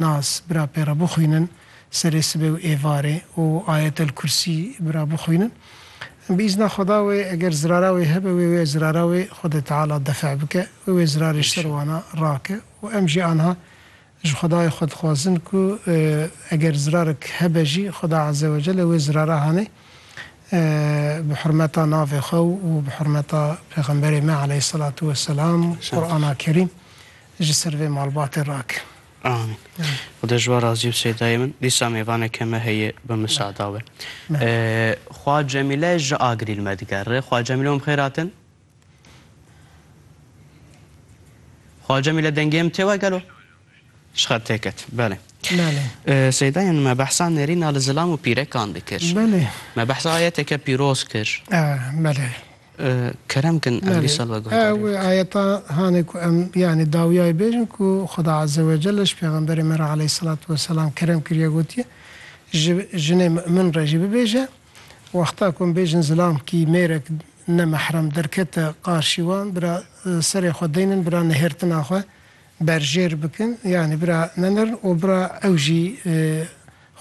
Nas, bira pê re bixwînin serê sibê û êvarê û Ayetel Kursî bira bixwînin. Bi îzna Xweda wê eger zirara wê hebe wê wê zirara wê Xwedê Teala def bike, wê wê zirarê ji ser wana rake û em jî anha ji Xwedayê xwe dixwazin ku eger zirarek hebe jî Xweda Eze we Celle wê zirara hanê bi hurmeta navê xwe û bi hurmeta Pêxemberê me Eleyhî Selatu Weselam û Qur'ana Kerîm ji ser vê malbatê rake. Amîn. Xuda ji we razî bise dayê min. Dîsa mêvaneke me heye bi misada we. Xwa Cemîle ji Agirîl me digere. Xwa Cemîle hûn bi xêr hatin. Xwa Cemîle dengê min tê we gelo? Ji xet tê ket. Belê. Belê. Seydayên me behsa nêrîna li zilam û pîrekan dikir. Belê. Me behsa ayeteke pîroz kir. Belê. Kerem kin em vîsal veguhdarî bikin. Ew ayeta hane ku em yanî dawiyayê bêjin ku Xuda Azze ve Celle ji Pêxemberê me re aleyhîsselatu weselam kerem kiriye gotiye, Ji jinê mu'min re jî bibêje, Wexta ku em bêjin zilam kî mêrek ne mehrem derkete qarşî wan, bira serê xwe deynin, bira nihêrtina xwe berjêr bikin, yanî bira nenerin û bira ew jî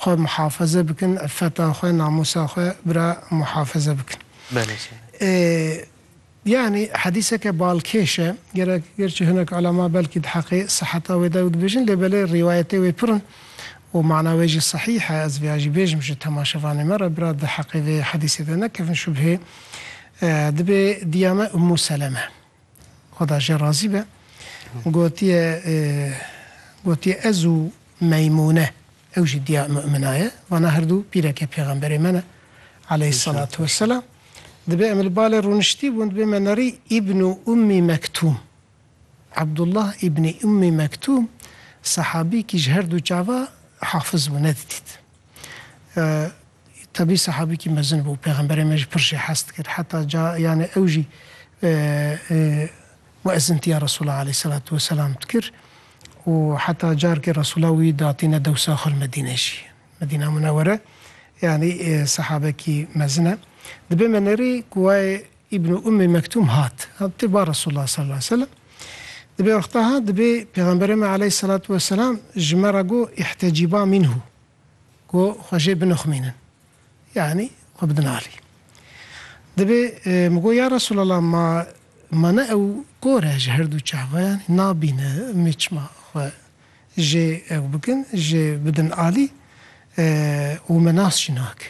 Xwe muhafaze bikin, iffeta xwe, namûsa xwe bira muhafaze bikin. Belê sîne. Yanî hedîseke balkêş e, gerek gerçî hinek ulema belkî di heqê siheta wê de ew dibêjin lê belê rîwayetê wê pir in û mana wê jî sihîh e, ez vêya jî bêjim ji temaşevanê me re bira di heqê vê hedîsê de nekevin şubhê. Dibê diya me Ummû Seleme. Xweda jê razî be, gotiye gotiye ez û Meymûne ew jî diya Mumina ye, vana her du pîreke pêxemberê me ne aleyhîsselatu wesselam. Dibê em li balê rûniştîbûn dibê me nerî Îbnû Ummî Mektûm. Abdullah Îbnî Ummî Mektûm sehabî kî ji her du çava hafiz bû nedidît. Tebî sehabîkî mezin bû. Pêxemberê me jî pir jê hez dikir. Heta ca yanê ew jî muezzintiya Resûla aleyhîsselatû weselam dikir û heta carkê Resûla wî datîne dewsa xwe li Medîne jî. Medîna Munewwere yanî sehabekî mezin e. Dibe me nerî ku wayê Îbn Ummî Mektûm hat. Hat tê ba Resûlullah sal aleyh selem. Dibê wexta hat dibê Pêxemberê me aleyh selatû weselam ji me re got îhtecîbâ mînhû, got xwe jê binixmînin, yanî xwe bidin alî. Dibê min got ya Resûlallah ma ma ne ew kor e ji herdû çavan yanî nabîne mê çima xwe jê ew bikin jê bidin alî û me nas jî nake.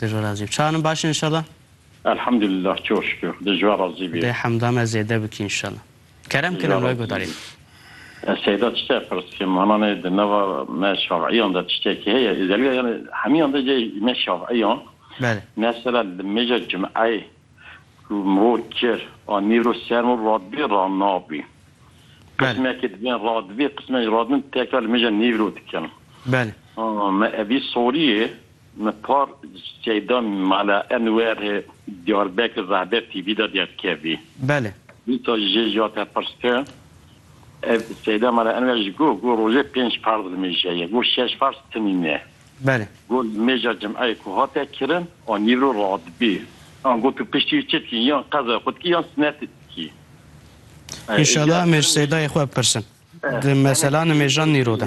Di jo razî bi. Çawa nin baş in înşallah? Elhamdulillah çok şükür. Di jo razî bi. Dê hemda me zêde bikî înşallah. Kerem kin em li we guhdarîn. Seyda tiştek pirs ke mananê di nava me şafîyan de tiştekî heye îzelî ya yanî hemîyan de cê me şafîyan mesela li mêja cimeyê ku mor kir a nîro ser mor radibê ranabî qismekê dibên radibê qismekê radibin tekra li mêja nîro dikin. Belê. Me evî sorîyê. Me par Şeyda mala Enwer Diyarbekir Rahbe TV de derkevî. Belê. Dîsa jê ji ya te pirse, ev Şeyda mala Enwer ji got, got rojê pênc farz li mêja ye, got şeş farz timî ne. Belê. Got li mêja cimeyê ku hate kirin a nîvro radibî. An got tu piştî wî çi dikî, yan qezaya xwe dikî yan sinetê dikî. Înşala em ê ji Şeydayê xwe bipirsin di mesela nimêja nîro de.